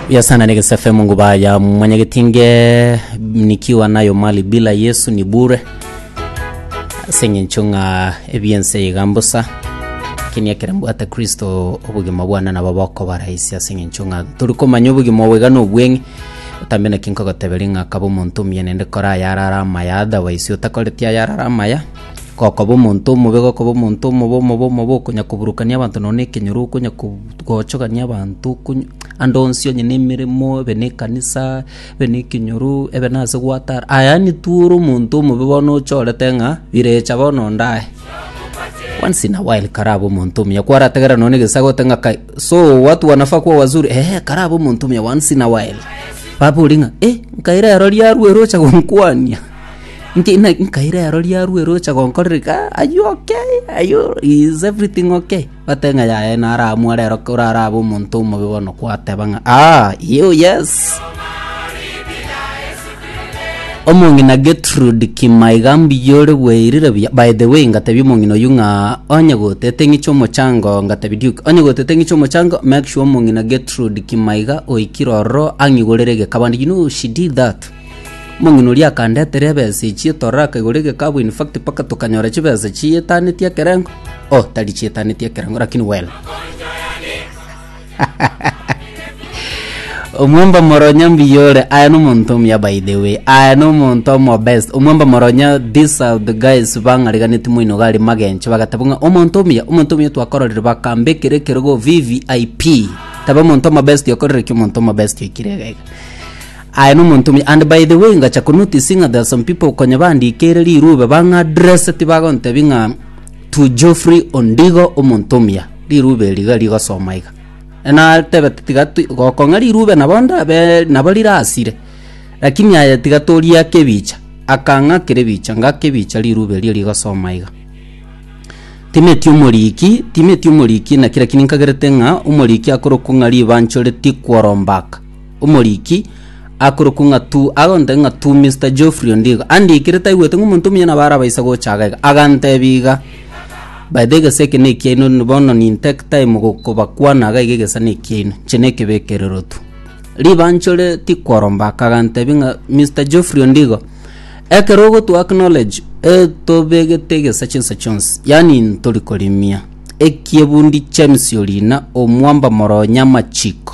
Biasana ni gisefe Mungu baya mwenye gitinge nikiwa nayo mali bila Yesu ni bure seng'encho ng'a ebiense igambusa lakini ekere mbwate Kristo obogima bwane nabo bokobara isi ase eng'encho ng'a tori komanya obogima obwega na obweng'e otambe naki nkogoteberia ng'a kaba omonto omuyene nde kora ayarara amaya otherwise otakoreti ayarara amaya Gokoba omonto omobe, gokoba omonto omobe, omobe, omobe, okonya koburukania abanto nonye na ekenyoro, okonya kobut- gochogania abanto, okonya ande onsi onye na emeremo, ebe na ekanisa, ebe na ekenyoro, ebe na ase gwatara, aye yaani tu ore omonto omobe bono ochorete ng'a birecha bono onde aye. Once in a while karabe omonto omuya, kwarategerera nonye na egesaga ogote ng'a kai, so watu wanafaa kuwa wazuri, eeh karabe omonto omuya once in a while. Baba oria ng'a eh, nkaire ero riarwa eroche gonkwania. Nki- na- nkaira ero riarwa ere ocha gonkorera iga are you okay? Are you- is everything okay? Batebe ng'a yaya naramware ero kora arabe omonto omobe bono kwateba ng'a aa you yes omong'ina Gertrude Kimaiga mbuya ore bweirire buya by the way ngatebia omong'ina oyio ng'a onye gotete ng'iche omochango ngatebia Duke onye gotete ng'iche omochango make sure omong'ina Gertrude Kimaiga oikire ororo ang'igorere egekabande you know she did that Omong'ina oria akandetera ebesa echio toraka igoro egekabu in fact mpaka tokanyora chibesa chiyetaneti ekerengo oh tari chiyetaneti ekerengo lakini well omwamba moronya mbuya ore aya nomonto omuya by the way aya nomonto omo best omwamba moronya this are the guys bang'ariganeti moino iga are magencho bagateba ng'a omonto omuya omonto omuya twakororire bakambekera ekerogo vvip taba omonto omo best okorire ki omonto omo best oikire iga iga Aye nomonto omuya, and by the way ngacha konotice ng'a there are some people konya bandikeire rirube bang'a address tibagontebia ng'a to Geoffrey Ondigo omonto omuya rirube eri iga rigosoma iga enatebe tiga ti gokong'a rirube nabo ndabe nabo rirasire lakini aye tiga toriake ebicha akang'a kere bicha ngake bicha rirube erio rigosoma iga timeti omoriki timeti omoriki naki lakini nkagerete ng'a omoriki akorokwa ng'a ribancho ritikworomba aka omoriki akorokwa ng'a tu agonteba ng'a tu Mr. Geoffrey Ondigo andikire taigwete ng'a omonto omuya nabo arabaisa gocha aga iga agantebia iga by the egesa eke nekiaino n- bono nin take time gokobakwana iga iga egesa nekiaino inche na ekebekerero tu ribanchore tikworomba aka agantebia ng'a Mr. Geoffrey Ondigo ekero ogotwa acknowledge eh tobegete egesa chinsa chionsi yaani ntori korimia ekiebundi James Orina omwamba moro nyamachiko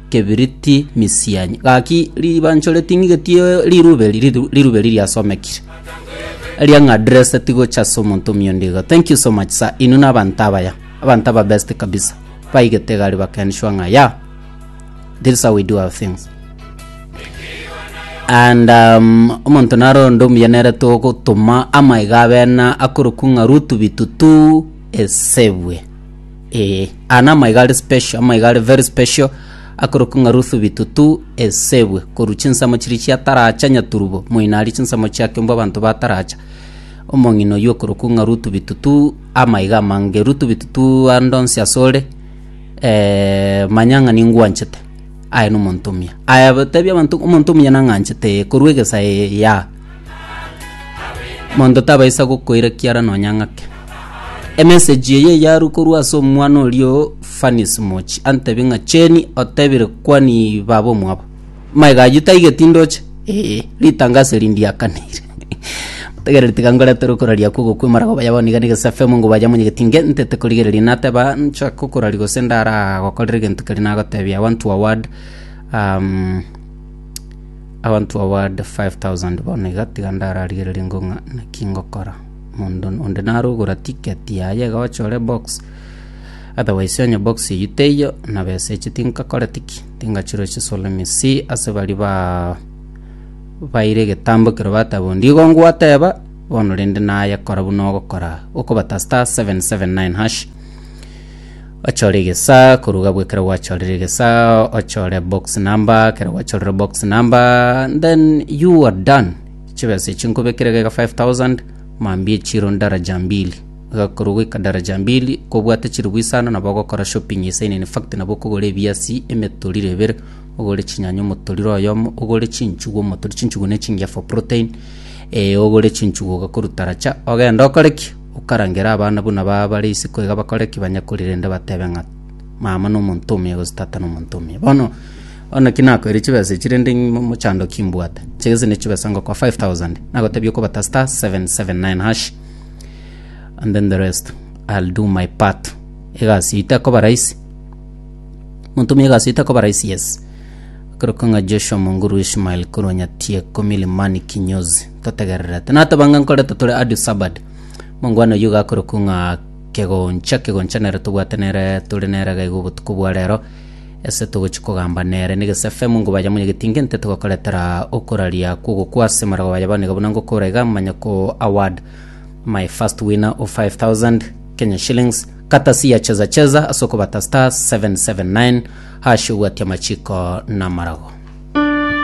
kebiriti misianyi. Gaki ribancho ritingigetie rirube ri- ri- rirube riria asomekire. Eria ng'a dress tigocha ase omonto omiondo iga. Thank you so much sir. Inwe na abanto abaya. Abanto aba best kabisa. Baigete gari bakenshwa ng'a ya. This is how we do our things. and um, omonto naronde omuya nere togotuma amaiga abena akorokung'a rutu bitutu esebwe Ee, aya namaiga are special, amaiga are very special akorokwa ng'a Ruth Bitutu Esebwe korwa chinsemo chiria chiataracha Nyaturubo moino aria chinsemo chiake mbwa abanto bataracha omong'ina oyio okorokwa ng'a Ruth Bitutu amaiga amange Ruth Bitutu ande onsi ase ore eh, manya ng'a ningwanchete aye nomonto omuya aya tebia abanto omonto omuya nang'anchete ee korwa egesa ee ya Monto tabaisa gokoira kiara nonya ng'ake. Emessage eye yarwa korwa ase omwana orio Fanis Mochi antebie ng'a Cheni otebire kwani baba omwabo. Maega ayio taigeti ndoche. Ee, ritangaso eri ndiakanire. Tegereri tiga ngoretere okoraria okwo gokwe marago baya boniga na egesafe omongo baya monyegeti inge ntete korigereria nateba nchake okoraria gose ndara gokorera egento keria nagotebia I want to award um, Abanto aba bande five thousand bono iga tiga ndararigererie ngo ng'a naki ngokora. Omonto onde nare ogora ticket yaye iga oche ore box. Otherwise onye box eyio teiyo na besa echi tinkakore tiki? Tingachire chisolo ime si ase bari ba baire egetambo ekero bateba onde igo ngwateba bono rende nayekora buna ogokora. Okobatasta seven seven nine hash. Ochore egesaa korwa gabwo ekero gwachorire egesaa ochore box number ekero gwachorire box number then you are done chibesa echi nkobekire gega 5000 mambia echiro ndaraja mbili iga korwa goika daraja mbili kobwate chiribu isano nabo ogokora shopping esaino in fact nabo okogora ebiasi emetoriro ebere ogore chinyanya omotoriro oyomo ogore chinchugu omotoriro chinchugu ne chingiya for protein eh ogore chinchugu ogakoru taracha ogende okore ki? Okarangera abana buna baba bare isiko iga bakore ki banyakuri rende batebe ng'a mama nomonto omuya gose tata nomonto omuya. Bono o naki nakoire chibesa echi rende ng'imochandokie mbwate. Chigese ne chibesa ngokoa 5000 nagotebia okobata star 779 hash and then the rest I'll do my part. Egasi eye tekoba rahisi. Monto omuya egasi eye tekoba rahisi yes. Okorokwa ng'a Joshua Munguru Ishmael korwa Nyatieko Milimani Kinyozi. totegererete. Natabanga nkorete tore Addis Sabad. Mangwana oyio gakorokwa ng'a kegoncha, kegoncha nere tobwate nere tore nere iga iga obotuko bwa rero. Ase togochi kogamba nere negese FM ngo baye monyegeti inge nte togokoretera okoraria kw'ogokwa ase marago baye baniga buna ngokora iga manya ko award my first winner of 5000 Kenya shillings katasi ya cheza cheza ase okobata star 779 hash obwati amachiko na amarago.